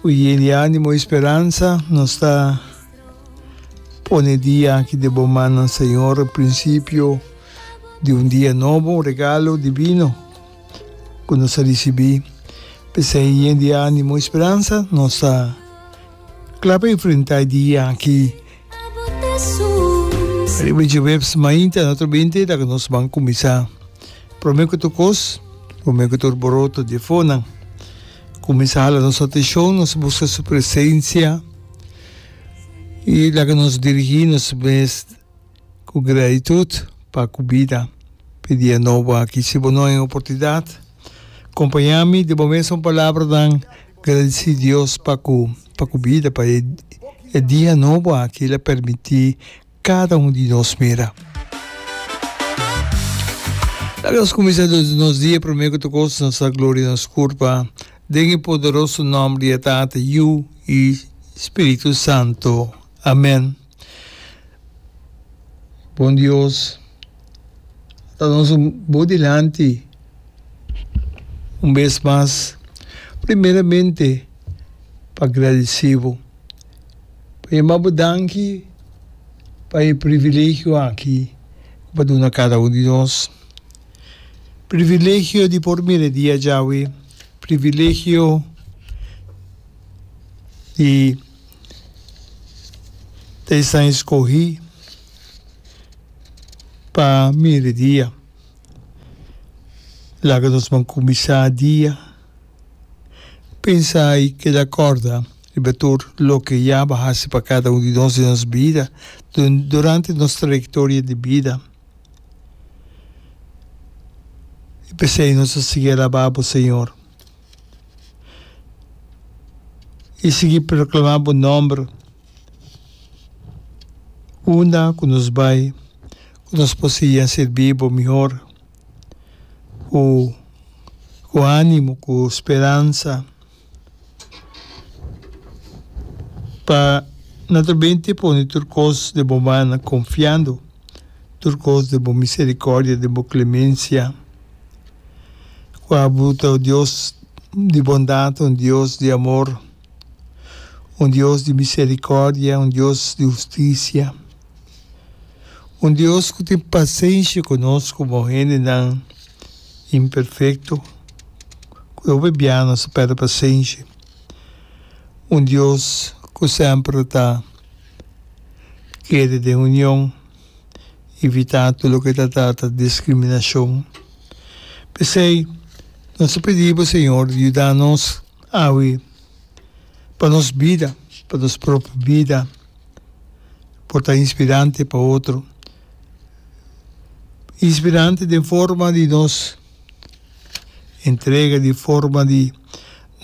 Ku yei di animo i speransa nos ta pone e dia aki den bo mannan, Señor, e prinsipio di un dia nobo, un regalo divino ku nos a risibí. P'esei yen di animo i speransa nos ta kla pa enfrentá e dia aki. Ariba di djeweps mainta na otro binte ta nos ban kuminsá. Promé ku tur kos, promé ku tur boroto di efonan, kuminsá hala nos ateshon, nos buska su presensia i laga nos dirigí nos mes ku gratitut pa ku bida. Pe dia nobo aki si bo no hay un oportunidat. Kompañá mi di bo mes un palabranan gradisí Dios pa ku pa ku bida, pa e e dia nobo aki el a permití kada un di nos mira. Laga nos kuminsá nos dia promé ku ta kos nos da gloria a nos Kur pa, den e poderoso nòmber di e Tata, Yu i Spiritu Santu. Amèn. Bon Dios a ta nos un bo dilanti un bes mas primeramente pa gradisi bo pa yama bo danki pa e privilegio aki ku bo a duna kada un di nos privilegio di por mira e dia djawe privilegio di ta esnan eskohí pa mieridia. Laga nos por kuminsá dia pensa i keda kòrda riba tur loke ya bo hasi pa kada un di nos den nos bida, durante nos trayektoria di bida. I p'esei nos ta sigui alabá bo, Señor. i sigui proklamá bo nòmber unda ku nos bai ku nos por sigui a sirbi bo mihor ku ku ánimo ku speransa pa nan ta binte pone tur kos den bo man konfiando tur kos den bo miserikòrdia den bo klemensia. Ku Abu ta un Dios di bondat, un Dios di amor, un Dios di miserikòrdia, un Dios di hustisia, un Dios ku tin pasenshi ku nos komo hendenan imperfekto ku hopi bia nos ta pèrdè pasenshi, un Dios ku semper ta kere den union ivitá tur loke ta trata diskriminashon. P'esei, nos ta pidi bo, Señor, yuda nos awe pa nos bida, pa nos propio bida, por ta inspirante pa otro. Inspirante den forma di nos entrega, di forma di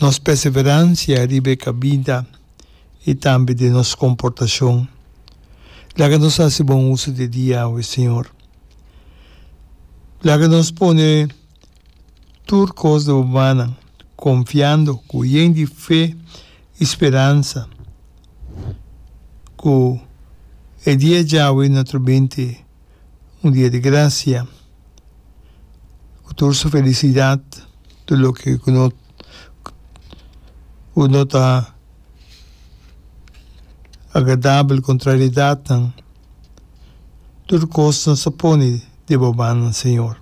nos perseveransha riba e kabinta. i tambe den nos komportashon. Laga nos hasi bon uso di e dia awe, Señor. Laga nos pone tur kos na bo mannan, konfiando ku yen di fe i speransa ku e dia djawe na trobente un dia di grasia ku tur su felisidat, tur loke ku no. ku no ta agradabel, kontraridatnan, tur kosnan sa pone deba mannan Señor.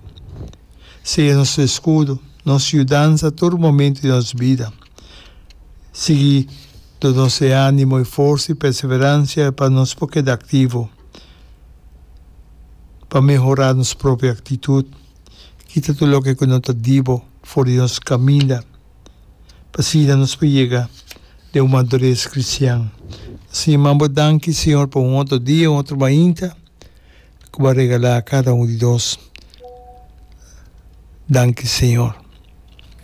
Si e nos eskudo, nos yudansa tur momento di nos bida. Sigui do nos e ánimo, e forsa, e perseveransia pa nos por keda aktivo, pa mehorá nos propio aktitut. Kita tur loke ku no ta dibo for di nos kaminda, pa asina nos por yega den un madures kristian. Siñor, manda bo danki, Siñor, pa un otro dia, un otro mainta ku bo a regalá a kada un di nos. Danki, Siñor.